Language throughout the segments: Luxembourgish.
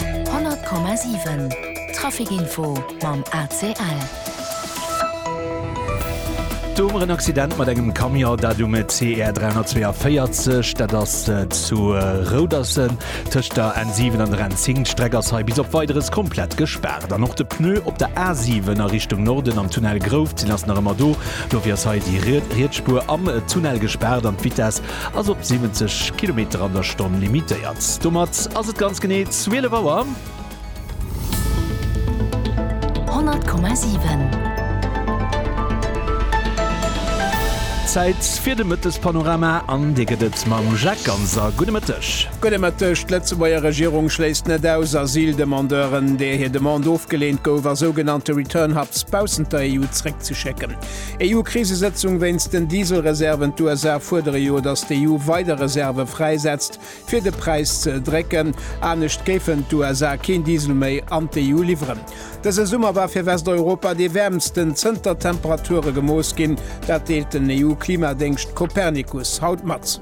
100,7 Traficinfo mam ACL. Do huet mer en Accident mat engem Camion, dat um CR 342. Dat ass zu Rouderssen tëscht der N7 an der N10. D'Streck ass hei bis op Weideres komplett gespaart. An och de Pneu op der A7 a Richtung Norden am Tunnel Grouft sinn ass nach ëmmer do. Dofir ass hei déi riets Spuer am Tunnel gespaart an d'Vitess ass op 70 Kilometer an der Stonn limitéiert. Domat ass et ganz genee 12 Auer. 100,7. Zäit fir de Mëttespanorama an dee gëtt et mam Jacques Ganser. Gudde Mëtteg. Gudde Mëtteg. D'Lëtzebuerger Regierung schléisst net aus, Asyldemandeuren, deer hir Demande ofgeleent gouf a sougenannte Return Hubs baussent der EU zréckzeschécken. EU-Krisesëtzung wéinst den Dieselreserven D'USA fuerdere jo, datt d'EU weider Reserve fräisetzt, fir de Präis ze drécken. Anescht géifen d'USA keen Diesel méi an d'EU liwweren. Dëse Summer war fir Westeuropa dee wäermsten zënter d'Temperature gemooss ginn. Dat deelt den EU-Klimadéngscht Copernicus haut mat.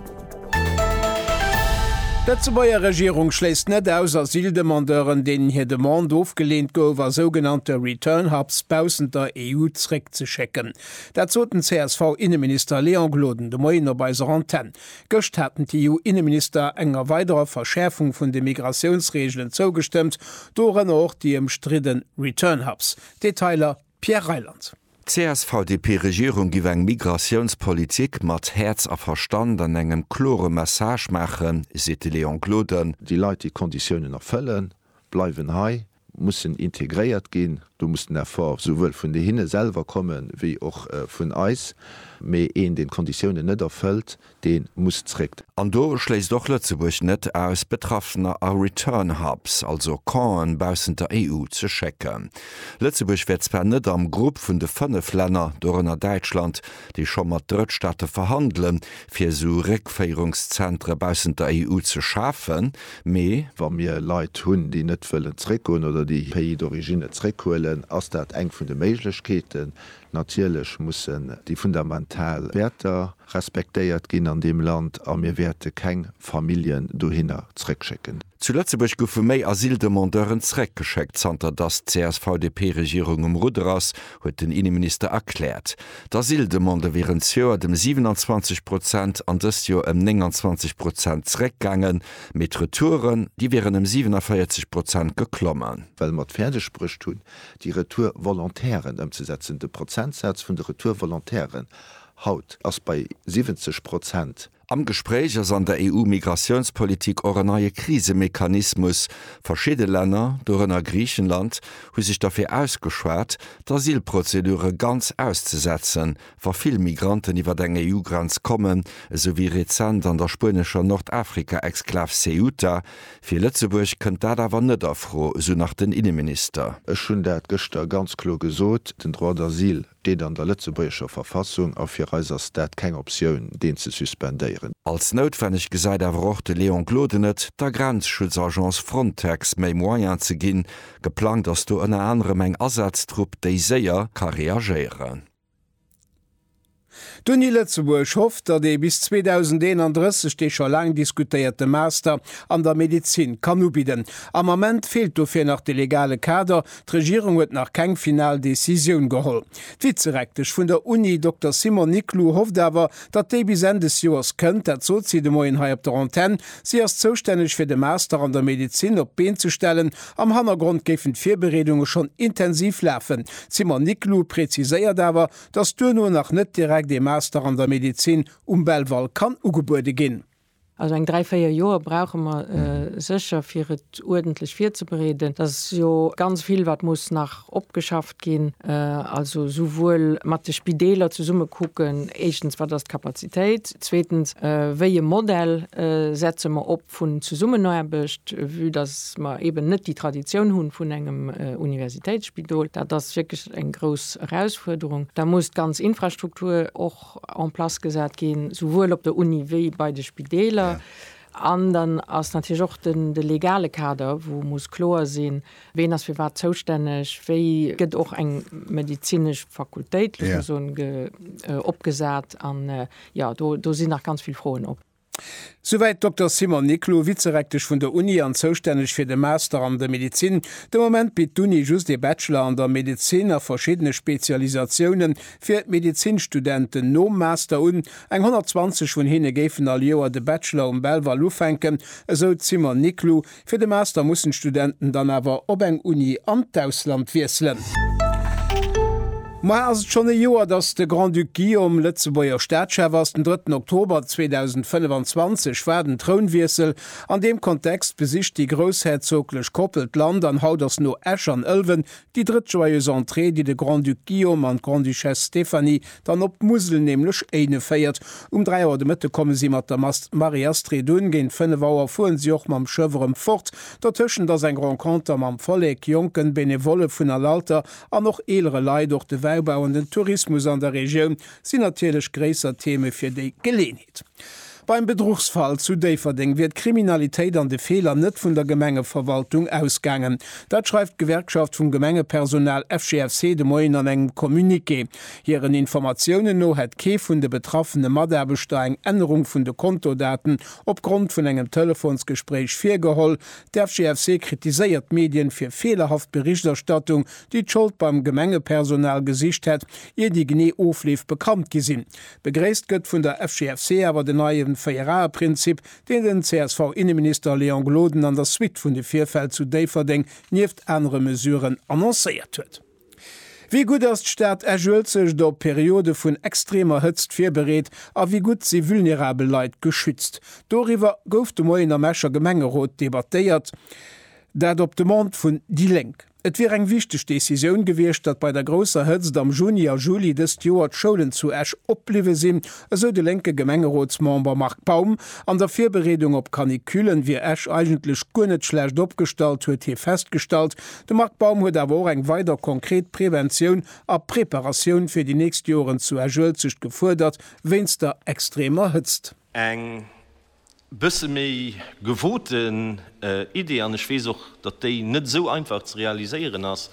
D'Lëtzebuerger Regierung schléisst net aus, Asyldemandeuren, deenen hir Demande ofgeleent gouf, a sougenannte Return Hubs baussent der EU zréckzeschécken. Dat sot den CSV-Inneminister Léon Gloden de Moien op eiser Antenn. Gëscht haten d'EU-Inneminister enger weiderer Verschäerfung vun de Migratiounsreegelen zougestëmmt, dorënner och déi ëmstridde Return Hubs. Detailer Pierre Reyland. D'CSV-DP-Regierung giff eng Migratiounspolitik mat Häerz a Verstand an engem klore Message maachen, seet de Léon Gloden. Déi Leit, déi d'Konditiounen erfëllen, bleiwen hei, mussen integréiert ginn. Do muss den Effort esouwuel vun hinne selwer kommen, wéi och vun eis. Mee een, deen d'Konditiounen net erfëllt, dee muss zréck. An do schléisst och Lëtzebuerg net aus, Betraffener a Return Hubs, also Campen baussent der EU, ze schécken. Lëtzebuerg wär zwar net am Grupp vun de fënnef Länner, dorënner Däitschland, déi scho mat Drëttstaate verhandelen, fir esou Réckféierungszentre baussent der EU ze schafen, mee, wa mir Leit hunn, déi net wëllen zréckgoen oder déi Pays d'origine zréckhuelen, ass dat eng vun de Méiglechkeeten. Natierlech mussen déi fundamental Wäerter respektéiert ginn an deem Land a mir wäerte keng Familljen dohinner zréckschécken. Zu Lëtzebuerg goufe méi Asyldemandeuren zeréckgeschéckt, zanter datt d'CSV-DP-Regierung um Rudder ass, huet den Inneminister erkläert. D'Asyldemande wieren d'Joer dem 27 Prozent an dëst Joer ëm 29 Prozent zeréckgaangen, mee d'Retouren, déi wieren ëm 47 Prozent geklommen. Well mer et fäerdeg bruecht hunn, déi Retour-Volontairen ëmzesetzen. De Prozentsaz vun de Retour-Volontairen haut ass bei 70 Prozent. Am Gespréich ass an der EU-Migratiounspolitik och en neie Krisemechanismus. Verschidde Länner, dorënner Griichenland, hu sech derfir ausgeschwat, d'Asylprozedure ganz auszesetzen, Wa vill Migranten iwwer eng EU-Grenz kommen, esou wéi rezent an der spuenescher Nordafrika-Exklav Ceuta, fir Lëtzebuerg kënnt dat awer net a Fro, esou nach den Inneminister. Ech hunn dat gëschter ganz kloer gesot, den Droit d'asile steet an der lëtzebuergescher Verfassung a fir eis ass dat keng Optioun, deen ze suspendéieren. Als noutwenneg gesäit awer och de Léon Gloden et, der Grenzschutzagence Frontex méi Moyen ze ginn. Geplangt ass do ënner anerem eng Asaaztrupp, déi séier ka reagéieren. D'Uni Lëtzebuerg hofft, datt ee bis 2031 dee scho laang diskutéierte Master an der Medezin kann ubidden. Am Ament feelt dofir nach de legale Kader, d'Regierung huet nach keng final Decisioun geholl. D'Vizerektesch vun der Uni, Dokter Simon Niclou, hofft awer, datt déi bis Enn des Joers kënnt, dat sot si de Moien hei op der Antenn. Si ass zoustänneg fir de Master an der Medezin op d'Been ze stellen Am Hannergrond géifen d'Virbereedunge schonn intensiv lafen. D'Simone Niclou preziséiert awer, datt duerno nach net direkt ee Master an der Medezin um Belval kann ugebuede ginn. Also eng dräi, véier Joer brauche mer sécher, fir et uerdentlech virzebereeden. Dat ass jo ganz vill, wat muss nach opgeschafft ginn. Also esouwuel mat de Spideeler zesumme kucken, éischtens, wat ass d'Kapazitéit? Zweetens, wéi e Modell setze mer op? vun Zesummenaarbecht, vue datt mer eeben net déi Traditioun hu vun engem Universitéitsspidol, dat ass wierklech eng grouss Erausfuerderung. Da muss d'ganz Infrastruktur och en place gesat ginn, souwuel op der Uni wéi bei de Spideeler. An dann ass natierlech och de legale Kader, wou muss kloer sinn, ween ass fir wat zoustänneg, wéi gëtt och eng medezinesch Fakultéit, wéi soll ech soen, opgesat. An jo, do sinn nach ganz vill Froen op. Souwäit d'Dokter Simon Niclou, Vizerektesch vun der Uni an zoustänneg fir de Master an der Medezin. De Moment bitt d'Uni just ee Bachelor an der Medezin a verschiddene Spezialisatiounen fir Medezinstudenten nom Master un. Eng 120 vun hinne géifen all Joer de Bachelor um Belval ufänken, esou d'Simon Niclou, Fir de Master mussen d'Studenten dann awer op eng Uni an d'Ausland wiesselen. Moie ass et schonn e Joer, datt de Grand-Duc Guillaume Lëtzebuerger Staatschef ass. Den drëtten Oktober 2025 war den Trounwiessel. An deem Kontext besicht déi groussherzoglech Koppel d'Land an haut ass no Esch an Ëlwen Déi drëtt Joyeuse Entrée, déi de Grand-Duc Guillaume an d'Grande-Duchesse Stéphanie dann op d'Musel, nämlech Éinen, féiert. Um 3 Auer de Mëtte komme si mat der Mass Marie-Astrid un. Géint 5 Auer fueren si och mam Schëff erëm fort. Dertëschent ass eng Renconter mam Vollek, Jonken, Benevollen vun all Alter an och eelere Leit. Och de Wäibau an den Tourismus an der Regioun sinn natierlech gréisser Theme fir déi Geleeënheet. Beim Bedruchsfall zu Déifferdeng wier d'Kriminalitéit an de Feeler net vun der Gemengeverwaltung ausgaangen. Dat schreift d'Gewerkschaft vum Gemengepersonal FGFC de Moien an engem Communiqué. Hiren Informatiounen no hätt kee vun de betraffene Mataarbechter eng Ännerung vun de Kontodaten opgrond vun engem Telefonsgespréich virgeholl. D'FGFC kritiséiert d'Medien fir feelerhaft Berichterstattung, déi d'Schold beim Gemengepersonal gesicht hätt, ier déi genee Ofleef bekannt gi sinn. Begréisst gëtt vun der FGFC awer den neie Véierae-Prinzip, deen den CSV-Inneminister Léon Gloden an der Suite vun de Virfäll zu Déifferdeng nieft anere Mesuren annoncéiert huet. Wéi gutt ass d'Stad Esch-Uelzecht op Periode vun extremer Hëtzt virbereet a wéi gutt si vulnerabel Leit geschützt? Doriwwer gouf de Moien am Escher Gemengerot debattéiert, dat op Demande vun déi Lénk. Et wier eng wichteg Decisioun gewiescht, datt bei der grousser Hëtzt am Juni a Juli dëst Joer d'Schoulen zu Esch opbliwwe sinn, esou de lénke Gemengerotsmember Marc Baum. An der Virbereedung op Canicullen wier Esch eigentlech guer net schlecht opgestallt, huet hie festgestallt. De Marc Baum huet awer och eng weider konkret Preventioun a Preparatioun fir déi nächst Joren zu Esch-Uelzecht gefuerdert, wéinst der extremer Hëtzt. Eng bësse méi gewoten Idee, an ech weess och, datt déi net esou einfach ze realiséieren ass,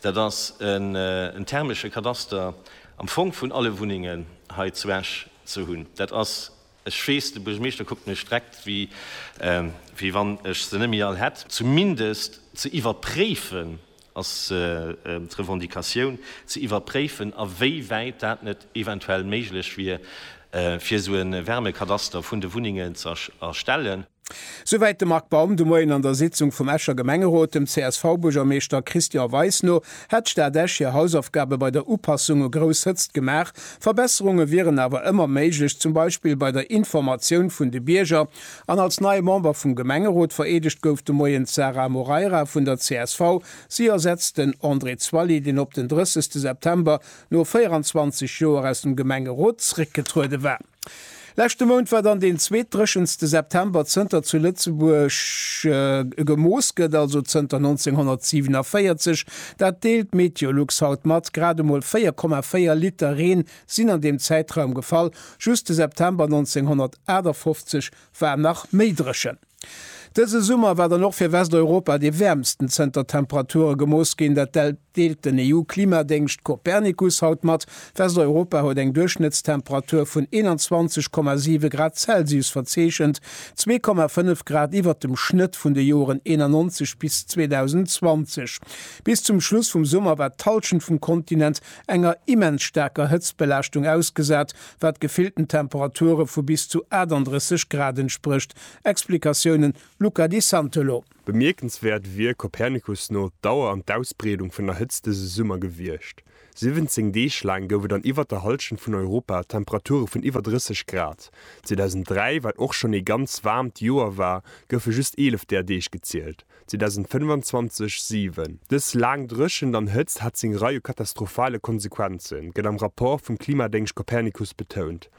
dat ass en thermesche Kadaster am Fong vun alle Wunnengen hei zu Esch ze hunn. Dat ass, ech weess, de Buergermeeschter kuckt mech dreckt, wéi wann ech se net méi all hätt. Zumindest ze iwwerpréifen, ass d'Revendicatioun ze iwwerpréifen a wéi wäit dat net eventuell méiglech wier, fir esou e Wärmekadaster vun de Wunnengen ze erstellen. Souwäit de Marc Baum de Moien an der Sitzung vum Escher Gemengerot. Dem CSV-Buergermeeschter Christian Weis no hätt d'Stad Esch hir Hausaufgabe bei der Upassung u grouss Hëtzt gemaach. Verbesserunge wieren awer ëmmer méiglech, zum Beispill bei der Informatioun vun de Bierger An als nei Member vum Gemengerot vereedegt gouf de Moien d'Sara Moreira vun der csv. Si ersetzt den André Zwally, deen op den 30 September no 24 Joer aus dem Gemengerot zréckgetruede war. Leschte Mount war dann deen zweetdréchenste September zënter zu Lëtzebuerg gemooss gëtt, also zënter 1947. Dat deelt Meteolux haut mat, grad emol 4,4 Liter Reen Sinn an deem Zäitraum gefall. Just de September 1958 war nach méi dréchen. Dëse Summer war dann och fir Westeuropa dee wäermsten zënter Temperature gemooss ginn. Dat deelt den EU-Klimadéngscht Copernicus haut mat. Westeuropa huet eng Duerchschnëttstemperatur vun 21,7 Grad Celsius verzeechent, 2,5 Grad iwwert dem Schnëtt vun de Joren 1991 bis 2020. Bis zum Schluss vum Summer war d'Hallschent vum Kontinent enger immens staarker Hëtztbelaaschtung ausgesat, wat gefillten Temperature vu bis zu 38 Grad entsprécht. Explikatiounen, Luca Di Santolo. Bemierkenswäert wier Copernicus no d'Dauer an d'Ausbreedung vun der Hëtzt dëse Summer gewiescht, 17 Deeg laang gouf et an iwwert der Hallschent vun Europa Temperature vun iwwer 30 Grad. 2003, wat och schonn ee ganz waarmt Joer war, goufe just 11 där Deeg gezielt. 2025, 7. Dës laang Dréchent an Hëtzt hat seng Rei u katastrophale Konsequenzen, gëtt am Rapport vum Klimadéngscht Copernicus betount.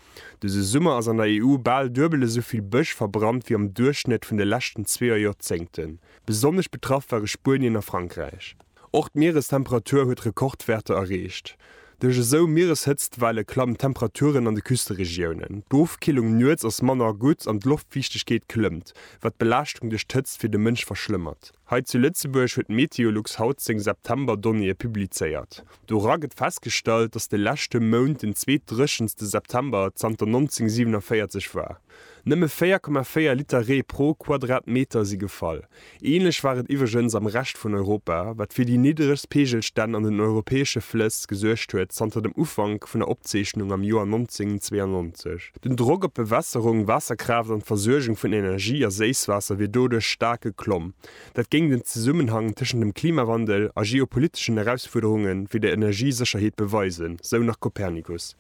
Dëse Summer ass an der EU bal duebel esou vill Bësch verbrannt wéi am Duerchschnëtt vun de leschten zwee Joerzéngten. Besonnesch betraff ware Spuenien a Frankräich. Och d'Mierestemperatur huet Rekordwäerter erreecht. Duerch esou Miereshëtztwelle klammen d'Temperaturen an de Küsteregiounen. D'Ofkillung nuets ass manner gutt an d'Loftfiichtegkeet klëmmt, wat d'Belaaschtung duerch d'Hëtzt fir de Mënsch verschlëmmert. Hei zu Lëtzebuerg huet Meteolux haut seng September-Donnéeë publizéiert. Dora gëtt festgestallt, datt de leschte Mount den zweet dréchenste September zanter 1947 war. Nëmme 4,4 Liter Ree pro Quadratmeter si gefall. Ähnlech war et iwweregens am Rescht vun Europa, wat fir déi niddregst Peegelstänn an den europäesche Flëss gesuergt huet zanter dem Ufank vun der Opzeechnung am Joer 1992. Den Drock op Bewässerung, Waasserkraaft an d'Versuergung vun Energie a Séisswaasser wier doduerch staark geklomm. Dat géing den Zesummenhang tëschent dem Klimawandel a geopoliteschen Erausfuerderunge fir d'Energiesécherheet beweisen, sou nach Copernicus.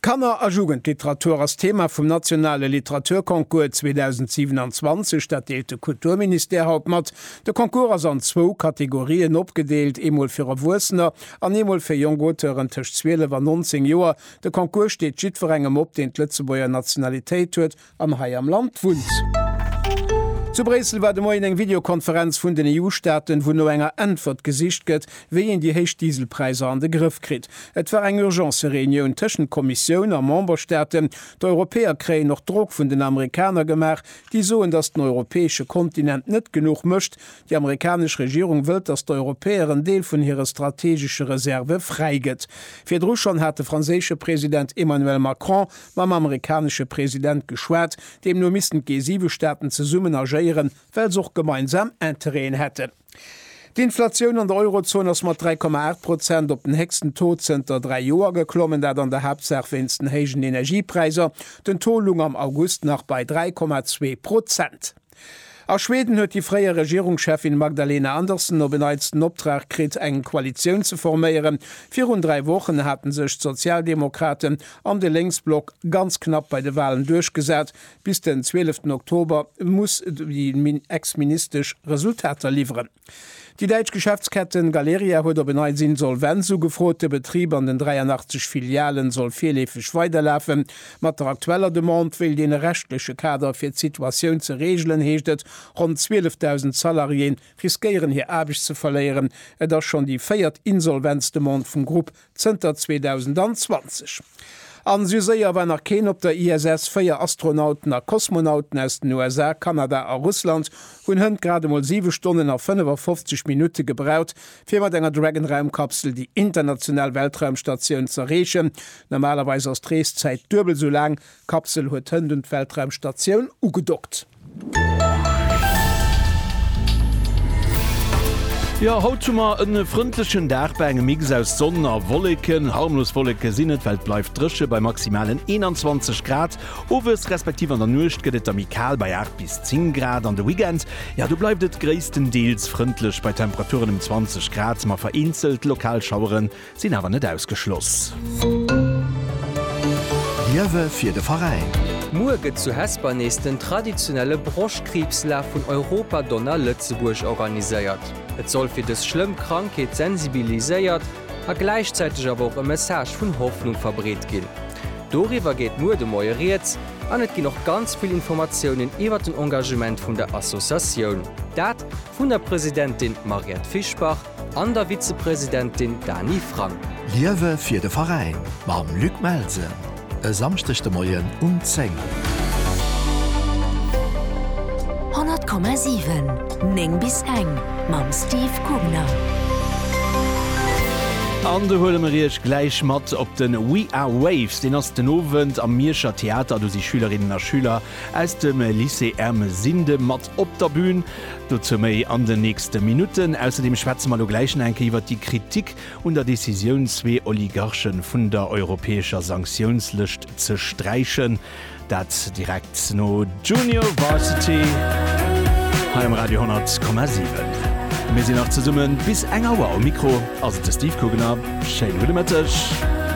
Kanner a Jugendliteratur ass d'Thema vum nationale Literaturconcours 2027. Dat deelt de Kulturministère haut mat. De Concours ass an zwou Kategorien opgedeelt, eemol fir Erwuessener an eemol fir jonk Auteuren tëscht 12 an 19 Joer. De Concours steet jiddwerengem op, deen d'Lëtzebuerger Nationalitéit huet an hei am Land wunnt. Zu Bréissel war de Moien eng Videokonferenz vun den EU-Staaten, wou no enger Äntwert gesicht gëtt, wéi een déi héich Dieselpräisser an de Grëff kritt. Et war eng Urgence-Reunioun tëschent Kommissioun a Memberstaaten. D'Europäer kréien och Drock vun den Amerikaner gemaach, déi soen, datt den europäesche Kontinent net genuch mécht. Déi amerikanesch Regierung wëllt, datt d'Europäer en Deel vun hire strategesche Reserve fräi gëtt. Virdru schonn hat de franséische President Emmanuel Macron mam amerikanesche President geschwat. Deemno missten d'G7 Staaten zesummen agéieren, well se och gemeinsam Interêten hätten. D'Inflatioun an der Eurozon ass mat 3,8 Prozent op den héchsten Taux zënter dräi Joer geklommen, dat an der Haaptsaach wéinst den héijen Energiepräisser. Den Taux lung am August nach bei 3,2 Prozent. A Schweden huet déi fréier Regierungscheffin Magdalena Andersson op en Neits den Optrag kritt, eng Koalitioun ze forméieren. Virun dräi Wochen hate sech d'Sozialdemokraten an de Lénksblock ganz knapp bei de Walen duerchgesat. Bis den 12 Oktober muss déi Ex-Ministesch Resultater liwweren. Déi däitsch Geschäftsketten Galeria huet op en Neits Insolvenz ugefrot. De Betrib an den 83 Filialen soll virleefeg weiderlafen. Mat der aktueller Demande wéilt een e rechtleche Kader fir d'Situatioun ze reegelen, heescht et. Ronn 12.000 Salariéen riskéieren hir Aarbecht ze verléieren. Et ass schonn déi véiert Insolvenzdemande vum Grupp Zënter 2020. An esou séier war nach keen op der ISS. Véier Astronauten a Kosmonauten aus den USA, Kanada a Russland hunn hënt grad emol 7 Stonnen a 55 Minutte gebraucht, fir mat enger Dragon-Raumkapsel déi international Weltraumstatioun z'erreechen. Normalerweis ass d'Reeszäit duebel esou laang D'Kapsel huet hënt un d'Weltraumstatioun ugedockt. Jo, haut hu mer en frëndlechen Dag bei engem Mix aus Sonn a Wolleken. Harmlos Wolleke sinn et, well et bleift dréche bei maximalen 21 Grad. Owes respektiv an der Nuecht gëtt et da méi kal bei 8 bis 10 Grad. An de Weekend, jo, do bleift et gréisstendeels frëndlech bei Temperaturen ëm 20 Grad, ma vereenzelt lokal Schaueren Sinn awer net ausgeschloss. Liewe fir de Veräin! Muer gëtt zu Hesper nees den traditionelle Broschtkriibslaf vun Europa Donna Lëtzebuerg organiséiert. Et soll fir dës schlëmm Krankheet sensibiliséiert a gläichzäiteg awer och e Message vun Hoffnung verbreet ginn. Doriwwer geet muer de Moie Rieds an et ginn och ganz vill Informatiounen iwwer den Engagement vun der Associatioun. Dat vun der Presidentin Mariette Fischbach. An der Vizepresidentin Dany Frank. Liewe fir de Veräin mam Luc Melsen e Samschdeg de Moien um 10. 100,7, 9 bis eng mam Steve Kugner. An do huele mer Iech gläich mat op de We Are Waves. Deen ass den Owend am Mierscher Theater. Do si Schülerinnen a Schüler aus dem Lycée Ermesinde mat op der Bühn. Dozou méi an den nächste Minutten. Ausserdeem schwätze mer elo gläich nach eng Kéier iwwert déi Kritik un der Decisioun, zwee Oligarche vun der europäescher Sanktiounslëscht ze sträichen. Dat direkt no Junior Varsity hei um Radio 10,7. Mir sinn nach zesummen bis eng Auer. Um Mikro ass et de Steve Kugener. Schéin gudde Mëtteg.